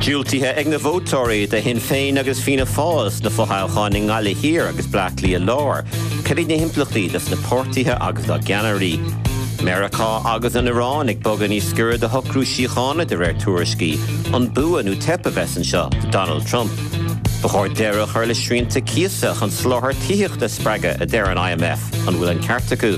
Diúltaithe ag na vótóirí do Shinn Féin agus Fianna Fáil sna fothoghcháin i nGaillimh Thiar agus Bleá Cliath Láir, cad iad na himpleachtaí dos na páirtithe agus dá gceannairí? Meiriceá agus an Iráin ag bogadh níos gaire do shocrú síochána de réir tuairiscí, an bua nó teip a bheas anseo do Donald Trump? Ba chóir deireadh a chur le srianta cíosa chun soláthar tithíochta a spreagadh a deir an IMF, an bhfuil an ceart acu?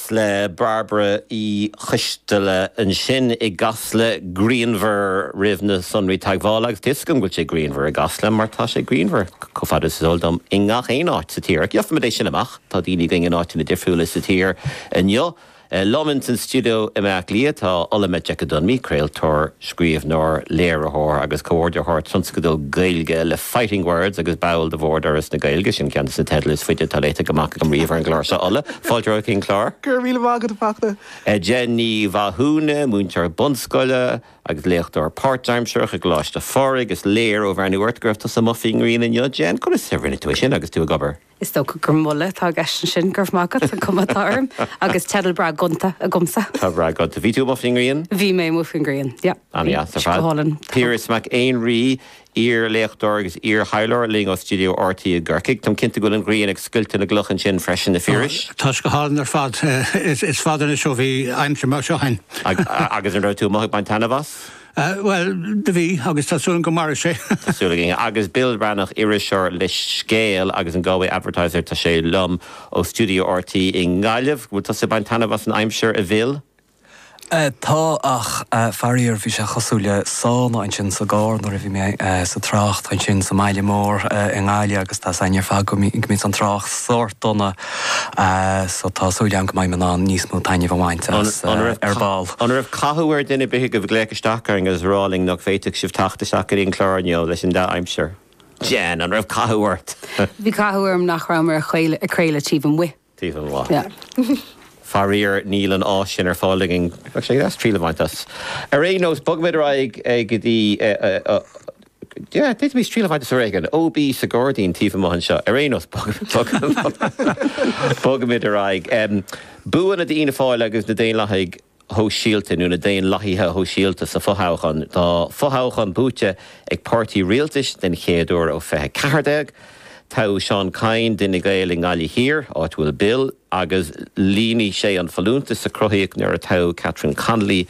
le Bairbre Uí Choisteala ansin i gCasla grianmhar roimh na sonraí teagmhála agus tá a fhios agam go bhfuil sé grianmhar i gCasla mar tá sé grianmhar, chomh fada is is eol dom, i ngach aon áit sa tír. Gheofaimid é sin amach. Tá daoine againn in áiteanna difriúla sa tír inniu. Liom ins an stiuideo i mBleá Cliath tá Ola Majekodunmi, craoltóir, scríobhnóir, léiritheoir agus comhordaitheoir tionscadal Gaeilge le Fighting Words agus ball de Bhord Fhoras na Gaeilge, sin ceann des na teidil is faide atá léite amach agam riamh ar an gclár seo, Ola. Fáilte romhat chuig an gclár. Go raibh míle maith agat a Fhachtna. Jen Ní Mhathúna, múinteoir bunscoile agus léachtóir páirtaimsearach i gColáiste Phádraig. Is léir ó bhreathnú ort go raibh tusa amuigh faoin ngrian inniu. Jen, conas a rinne tú é sin agus tú ag obair? Is dócha gur moladh atá i gceist ansin, go raibh maith agat, an cuma atá orm, agus teideal breá gonta agamsa. Tá breá gonta. Bhí tú amuigh faoin ngrian? Bhí mé amuigh faoin ngrian, yep. Ana dheas ar fad. Go hálainn. Piaras Mac Éinrí, iar-léachtóir agus iar-thaidhleoir linn ó studio RTÉ i gCorcaigh. Táim cinnte go bhfuil an ghrian ag scoilteadh na gcloch ansin freisin, a Phiarais. Tá sé go hálainn ar fad. Is fada anois ó bhí aimsir mar seo ann. Agus an raibh tú amuigh ag baint taitneamh as? Bhuel, do bhí, agus tá súil agam go mairfidh sé. Tá súil againn. Agus Bill Breathnach, iriseoir le Scéal agus an Galway Advertiser, tá sé liom ó studio RTÉ i nGaillimh. An bhfuil tusa ag baint taitneamh as an aimsir, a Bhill? Tá, ach faraor bhí sé cosúil le sauna ansin sa gcarr nuair a bhí mé sa trácht ansin sa mbaile mór i nGaillimh agus tá a fhios againn ar fad go mbíonn an trácht sórt dona so tá súil agam go mbeidh mé in ann níos mó taitnimh a bhaint as ar ball. An raibh cathú ar dhuine bith agaibh glaoch isteach orainn agus a rá linn nach bhféadfadh sibh teacht isteach go dtí an clár inniu leis an dea-aimsir? Jen, an raibh cathú ort? Bhí cathú orm nach rabhamar ag craoladh taobh amuigh. taobh amuigh. Faraor, níl an áis sin ar fáil againn. Triail a bhaint as. Ar aon nós, bogfaimid ar aghaidh go dtí, d'fhéadfaimis triail a bhaint as uair éigin. OB, sa ghairdín taobh amuigh anseo. Ar aon nós, bogfaimid ar aghaidh. Buanna d'Fhianna Fáil agus na Daonlathaigh. shóisialta nó na daonlathaithe shóisialta sa fothoghchán. Tá fothoghchán buaite ag páirtí rialtais den chéad uair ó 2014. Toghadh Seán Kyne d'Fhine Gael i nGaillimh Thiar, áit a bhfuil Bill, agus líonfaidh sé an folúntas a cruthaíodh nuair a toghadh Catherine Connolly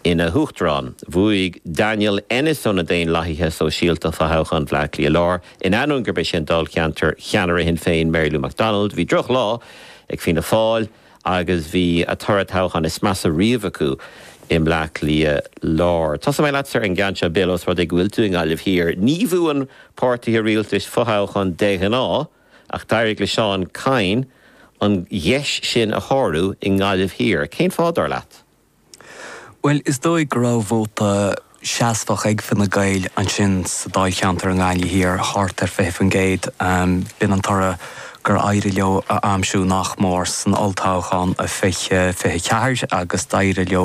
ina hUachtarán. Bhuaigh Daniel Ennis ó na Daonlathaithe Sóisialta fothoghchán Bhleá Cliath Láir. In ainneoin gurb é sin dáilcheantar cheannaire Shinn Féin Mary Lou McDonald, bhí drochlá ag Fianna Fáil, agus bhí a toradh toghcháin is measa riamh acu i mBleá Cliath Lár. Tosóidh mé leatsa ar an gceann seo, Bill, ós rud é go bhfuil tú i nGaillimh Thiar. Ní bhuann páirtithe rialtais fothoghchán de ghnáth, ach d'éirigh le Seán Kyne an gheis sin a shárú i nGaillimh Thiar. Cén fáth, dar leat? Bhuel, is dóigh go raibh vóta seasmhach ag Fine Gael ansin sa dáilcheantar i nGaillimh Thiar, thart ar 20%. B'in an toradh gur éirigh leo a aimsiú nach mór san olltoghchán i 2024 agus d'éirigh leo